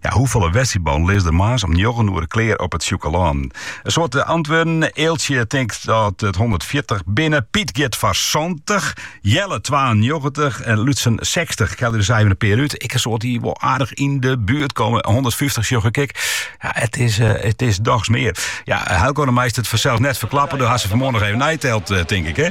Ja, hoefolle wedstriidballen lizze der moarns om njoggen oere klear op it Sjûkelân? In soad antwurden. Eeltsje tinkt dat it hûndertfjirtich binne, Piet giet foar santich, Jelle twaennjoggentich en Lutsen sechstich. Ik helje der sa even in pear út. Ik ha in soad dy't wol aardich yn de buert komme. Hûndertfyftich sjoch ik ek. Ja, it is, eh, it is dochs mear. Ja, Heilko, do meist it fansels net ferklappe. Do hast se fan 'e moarn noch even neiteld, eh, tink ik, hè?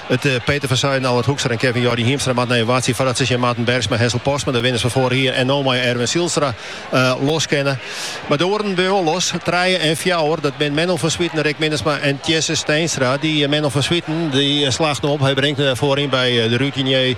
It Peter van Zuiden, Allard Hoekstra en Kevin Jordi Hiemstra moatte noch wachtsje foardat se tsjin Marten Bergsma, Hessel Postma, de winners fan foarich jier, en no mei Erwin Zijlstra los kinne. Mar de oaren binne wol los. Trije en fjouwer, dat binne Menno van Zwieten, Rick Minnesma en Tjisse Steenstra. Dy Menno van Zwieten, dy slacht no op. Hy bringt foaryn by de routinier.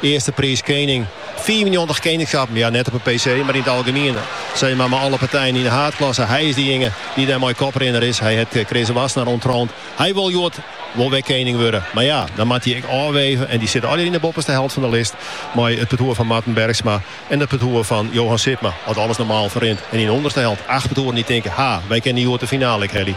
Earste priis kening. Fiifennjoggentich keningschappen, ja net op de PC, mar yn it algemien. Sis mar mei alle partijen yn de haadklasse. Hy is dejinge dy't dêr mei koprinner is. Hy hat Chris Wassenaar ûnttroand. Hy wol hjoed wol wer kening wurde. Mar ja, dan moat hy ek ôfweve en dy sitte allegear yn de boppeste helte fan de list mei it partoer fan Marten Bergsma en it partoer fan Johan Sipma, as alles normaal ferrint. En yn de ûnderste helte acht partoeren dy't tinke, ha, wy kinne hjoed de finale ek helje.